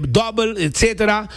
dobbel etc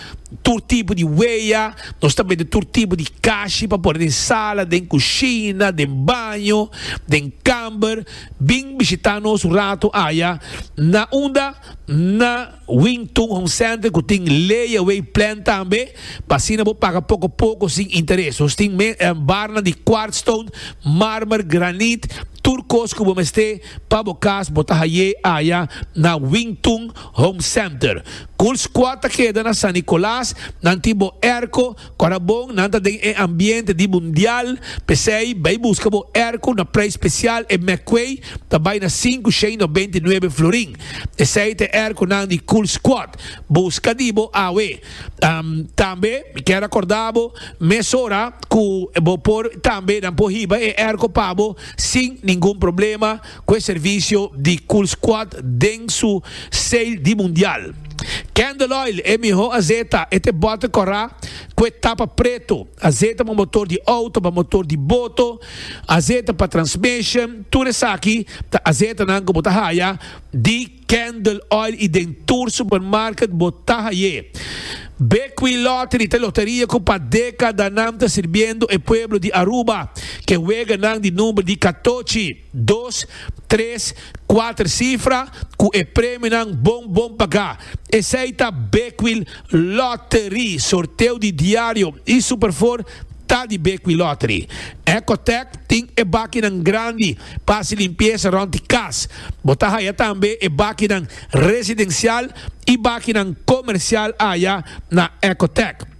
tur tipo di wea nos ta mete tur tipo di kashi pa pone den sala den kushina den baño den kamber bin bishita nos un rato aya na unda na Wingtun Home Center ku tin lay away plan tambe pa asina bo paga poko poko sin interes nos tin barnan di quartz stone marmer granit tur kos ku bo mester pa bo kas bo ta haye aya na Wingtun Home Center. Cool Squad ta keda na San Nicolas, nan tin bo airco, cu a ta bon, nan ta den e ambiente di mundial, p'esey bay busca bo airco na prijs special, e mecway ta bay na sinku shei no beinti nuebe florin. Esey ta e airconan di Cool Squad. Busca di bo awe. Tambe mi kier a corda bo mesora cu bo por tambe nan por hiba e airco pa bo sin ningun problema. cu e servicio di Cool Squad den su sale di Mundial. Candle Oil e miho azeta e te bote cora cu e tapa preto. Azeta pa motor di auto, pa motor di boto, azeta pa transmission, tur esaki ta azetanan cu bo ta haya di. Candle Oil y den tur supermarket bo ta haye. Bequi Lottery ta e loteria cu pa decadanan ta sirbiendo e pueblo di Aruba cu e weganan di number di catochi, dos, tres, cuater cifra cu e premionan bon bon paga. Esey ta Bequi Lottery. Sorteo di diario y Superfour ta di Bequi Lottery. Ecotech tin e bakinan grandi. Pa hasi limpiesa rond di kas. Bo ta haya tambe e bakinan residensial i bakinan komersial aya na Ecotec.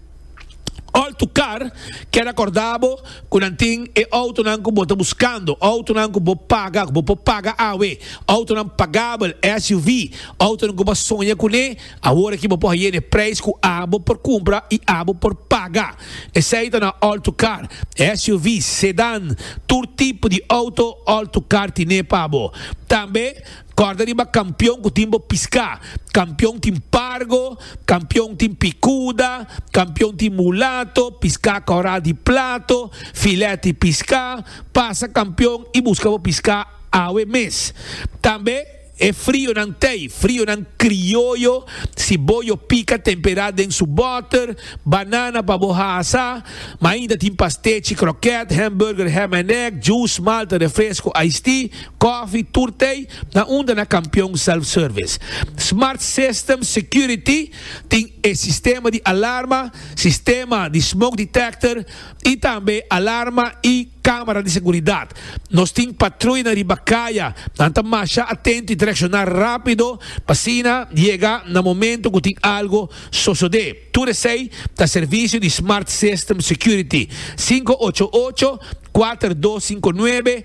Alto Car kere akordá bo ku nan tin e outonan ku bo ta buskando, outonan ku bo paga, ku bo por paga awe, outonan pagabel, SUV, outonan ku bo a soña kuné. Awor aki bo por haye n'e prijs cu abo por cumpra y abo por paga. Esey ta na All-to-Car, SUV's, Sedan, tur tipo di auto All-to-Car tine pa bo. Tambe corda riba Campeon cu tin bo pisca. Campeon tin Pargo, Campeon tin Picuda, Campeon tin Mulato, Pisca Corral di Plato, Filet y Pisca. Pasa Campeon y busca bo pisca awe mes. Tambe. E frionan tei, frionan krioyo, si bo yo pika tempera den su boter, banana pa bo hasa, ma ainda tin pastechi, kroket, hamburger, ham en egg, juice, malta, refresco, iced tea, kofi, tur tei, na unda na kampion self service. Smart System Security tin e sistema di alarma, sistema di smoke detector, y tambe alarma y camera di seguridad. Nos tin patruyanan riba caya, nan ta masha atento y ta reacciona rapido pa asina yega na momento cu tin algo sosode. Tur esey ta servicio di Smart System Security, cinco ocho ocho, cuater dos cinco nuebe,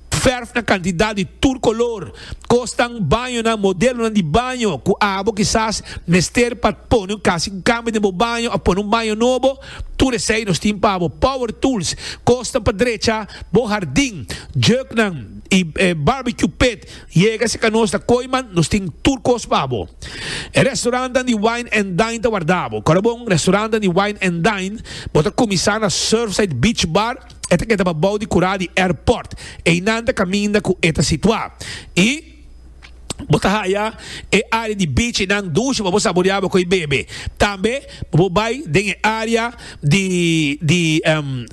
Verf na kantidad di tur kolor. Kosnan, bañonan, modelonan di baño ku abo kisas mester pa pone un kasi un kambio den bo baño òf pone un baño nobo, tur esei nos tin pa bo. Power tools, kosnan pa drecha bo hardin, juknan i barbecue pit. Yega si ka nos ta koiman, nos tin tur kos pa bo. E restorannan di wine and dine ta warda bo. Kòrda bon, restorannan di wine and dine bo ta kuminsá na Surfside Beach Bar, E ta keda pa bou di kura di airport. Einan ta kaminda ku e ta situá. I bo ta haya e área di beach einan dushi pa bo saboreá bo koi bebe. Tambe bo por bai den e área di di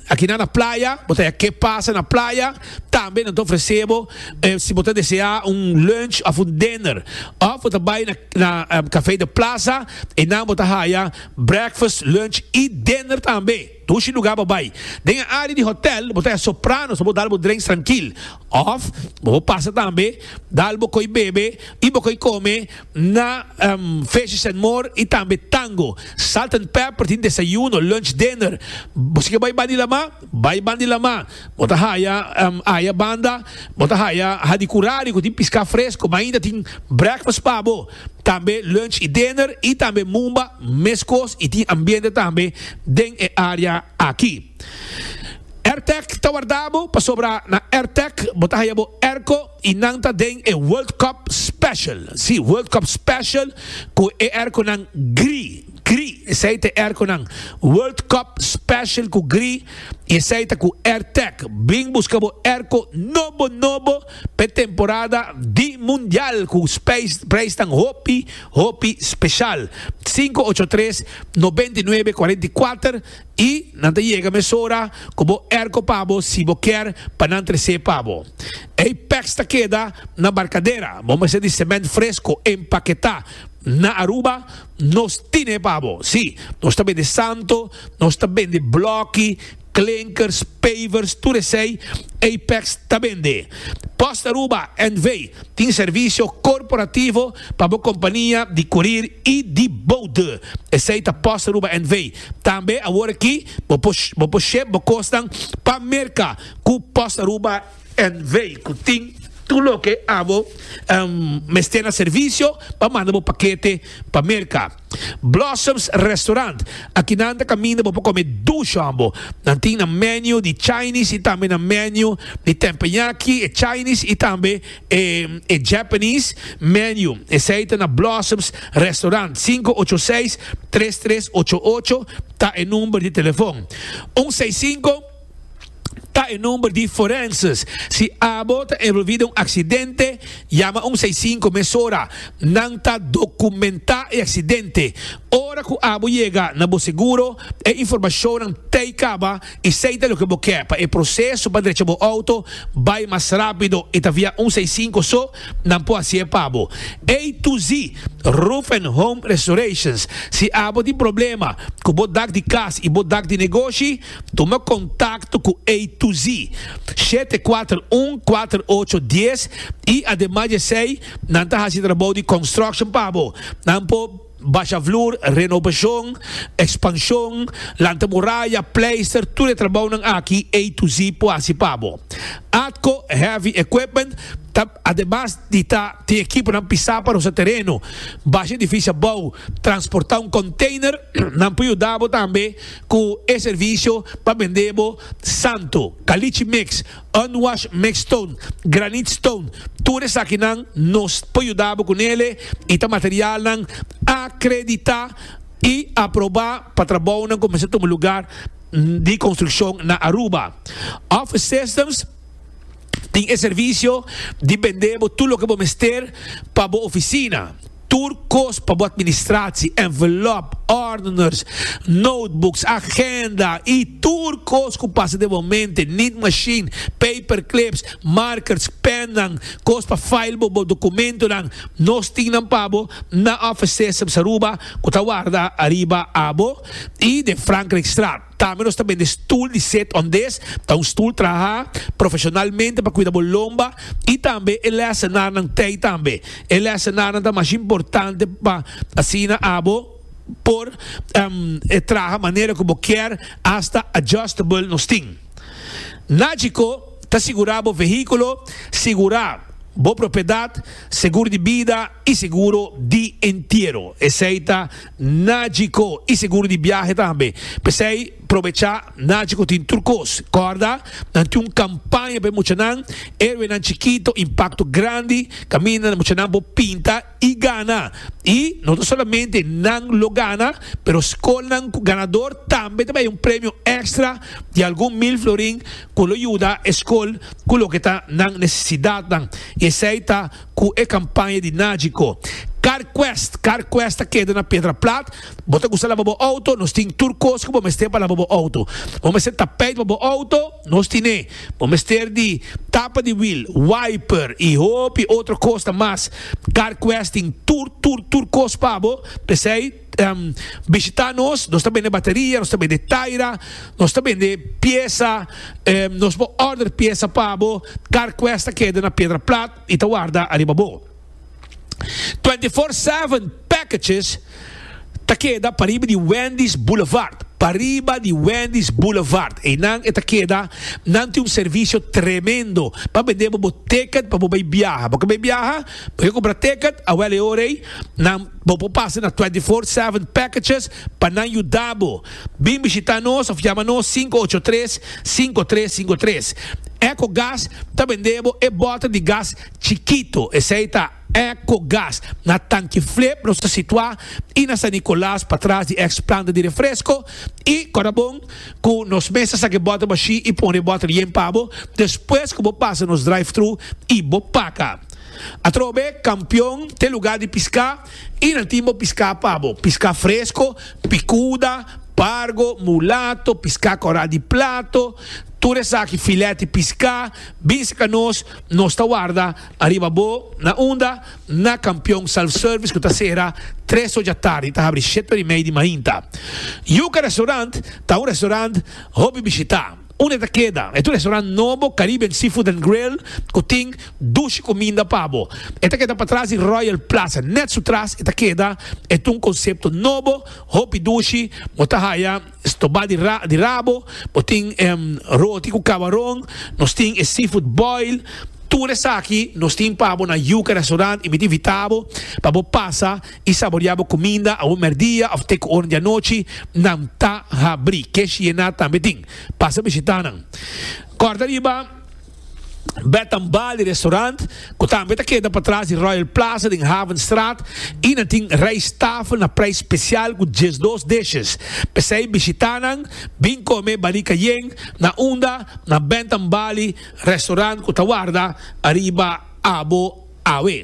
akinan na playa, bo ta haya ke pasa na playa. Tambe nan ta ofresé bo si bo ta deseá un lunch òf un dinner. Òf bo ta bai na na Café de Plaza einan bo ta haya breakfast, lunch i dinner tambe. Dushi lugar bo bai. Den e área di hotèl bo ta e Sopranos pa bo dal bo drenks trankil. Òf bo por pasa tambe dal bo koi bebe i bo koi kome na Fishes and More i tambe Tango. Salt and Pepper tin desayuno, lunch, dinner. Bo si ke bai Bandi Lamá, bai Bandi Lamá. Bo ta haya aya banda, bo ta haya hadi kurari ku tin piská fresko, ma ainda tin brekfast pa bo, tambe lunch i dinner i tambe mumba meskos i tin ambiente tambe den e área aki. Airtec ta warda bo pasobra na Airtec bo ta haya bo airco, Y nan ta den e World Cup Special, si, World Cup Special cu e airconan gri, gri, esey ta e airconan World Cup Special cu gri y esey ta cu Airtech. Bing busca bo airco nobo, nobo pa e temporada di Mundial cu prijsnan hopi, hopi special. Sinku ocho tres, nobenta i nuebe, kuarenta i kuater. I nan ta yega mesora ku bo erko pa bo si bo kier pa nan tres'é pa bo. Ei pèks ta keda na barkadera, bo mester di semènt fresko empaketá. Na Aruba nos tin'é pa bo. Sí, nos ta bende santo, nos ta bende blòki, klinkers, pavers, tur esei ei pèks ta bende. Post Aruba NV. tin servisio korporativo pa bo kompania di kurir i di boude. Esei ta Post Aruba NV. Tambe awor aki bo por bo por shep bo kosnan pa Merka ku Post Aruba NV. ku tin tur loke abo mester na servisio pa manda bo pakete pa Merka. Blossoms Restaurant, Aki nan ta kaminda bo por kome dush hòmbo. Nan tin nan menu di Chinese i tambe nan menu di tempenyaki, e Chinese i tambe E e Japanese menu esei ta na Blossoms Restaurant sinku ocho seis tres tres ocho ocho ta e number di telefon un seis sinku ta e number di forenses si abo ta envolvi den un aksidente yama un seis sinku mesora nan ta dokumenta e aksidente ora ku abo yega na bo seguro e informashonnan tei kaba y sey ta loke bo ke pa e proceso pa drecha bo auto bay mas rapido y ta via un sey cinco so nan por haci'e pa bo. A to Z Roof and Home Restorations Si abo tin problema cu bo dak di cas y bo dak di negoshi tuma contacto cu A to Z shete kuater un kuater ocho dies y ademas di esey nan ta haci trabou di construction pa bo nan por Basha vloer, renobashon, ekspanshon, lanta moraya, pleister, tur e trabounan aki A to Z por hasi pa bo. Atco Heavy Equipment ta ademas di ta tin ekiponan pisá pa rosa tereno, basha edifisio abou, transportá un konteiner, nan por yuda bo tambe ku e servisio pa bend'é bo santo, kalichi mix, Unwash mix stone, granite stone, tur esakinan nos por yuda bo ku nele i ta materialnan akreditá i aprobá pa trabounan ku mester tuma lugar di konstrukshon na Aruba. Office Systems tin e servisio di bendé bo tur loke bo mester pa bo ofisina. Tur kos pa bo administratie, envelop, ordeners, notebooks, agenda y tur kos cu pasa den bo mente, niet machine, paperclips, markers, pennan, kos pa file bo bo documentonan, nos tin nan pa bo na Office Systems Aruba cu ta warda ariba abo y den Frankrijkstraat. Tambe nos ta bende stul di set on des ta un stul traha profesionalmente pa kuida bo lomba y tambe e lesenarnan tey tambe. E lesenarnan ta mas importante pa asina abo por traha manera cu bo kier hasta adjustable nos tin. Nagico ta sigura bo vehiculo, sigura bo propiedad, segur di bida y seguro di entiero. Esey ta. Nagico y seguro di biahe tambe. P'esey probecha, Nagico tin tur cos. Corda, nan tin un campaña p'e muchanan, Héroenan Chikito, Impacto Grandi, caminda na muchanan por pinta y gana. Y no ta solamente nan lo gana, pero scolnan cu ganador tambe ta bay un premio extra di algun mil florin cu lo yuda e scol cu loke ta nan necesidadnan. Y esey ta. cu e campaña di Nagico. Car Quest, Car Quest ta keda na Pedra Plat. Bo ta gusta laba bo auto? Nos tin tur cos cu bo mester pa laba bo auto. Bo mester tapijt pa bo auto? Nos tin e. Bo mester di tapa di wiel, wiper y hopi otro cosnan mas. Car Quest tin tur, tur, tur cos pa bo. P'esey. um, bishita nos, nos ta bende bateria, nos ta bende taira, nos ta bende piesa, um, nos bo order piesa pa bo, car quest ta keda na piedra plat y ta warda ariba bo. 24-7 packages ta keda pariba di Wendy's Boulevard. Pariba di Wendy's Boulevard. E nan e ta keda, nan ti un servicio tremendo. Pa bende bo ticket pa bo bay biaha. Bo ka bay biaha? Yo compra ticket awel e ora ey nan bo por pasa na twenty four seven packages pa nan yuda bo. Bin bishita nos of yama nos sinku ocho tres sinku tres sinku tres. Eco Gas ta bende bo e bota di gas chikito, esey ta Eco Gas. Na Tanki Flip nos ta situa y na San Nicolas patras di ex planta di refresco y Corabon cu nos mes ta saca e bota bashi y pone e bota yen pa bo despues cu bo pasa nos drive thru y bo paca. Atrobe kampion te lugá di piská i nan tin bo piská pa bo. Piská fresko, pikuda, pargo, mulato, piská kòrá di plato, tur esaki filèt di piská, bin sika nos, nos ta warda ariba bo. Na unda? Na kampion self-service ku ta sera tres ocha tardi i ta habri shete ora i mei di mainta. Yuka Restaurant ta un restaurant hopi bishitá. Un e ta keda e tu restaurant nobo Caribbean Seafood and Grill ku tin dushi kuminda pa bo. E ta keda patras di Royal Plaza. Nèt su tras e ta keda e tu un konsepto nobo, hopi dushi, bo ta haya stobá di di rabo, bo tin roti ku kabaron, nos tin e seafood boil. Tur esaki nos tin pa bo na Yuca Restaurant i mi ta invitá bo pa bo pasa i saboreá bo kuminda awor mèrdia òf te ku oren di anochi, nan ta habrí. Kesh Yená tambe tin. Pasa bishitá nan. Kòrda riba Bed and Bali Restaurant, ku tambe ta keda patras di Royal Plaza den Havenstraat i nan tin rijsttafel na preis spesial ku diesdos dishes. P'esei bishitá nan, bin kome Bali Cayenne na unda na Bed and Bali Restaurant ku ta warda ariba abo awe.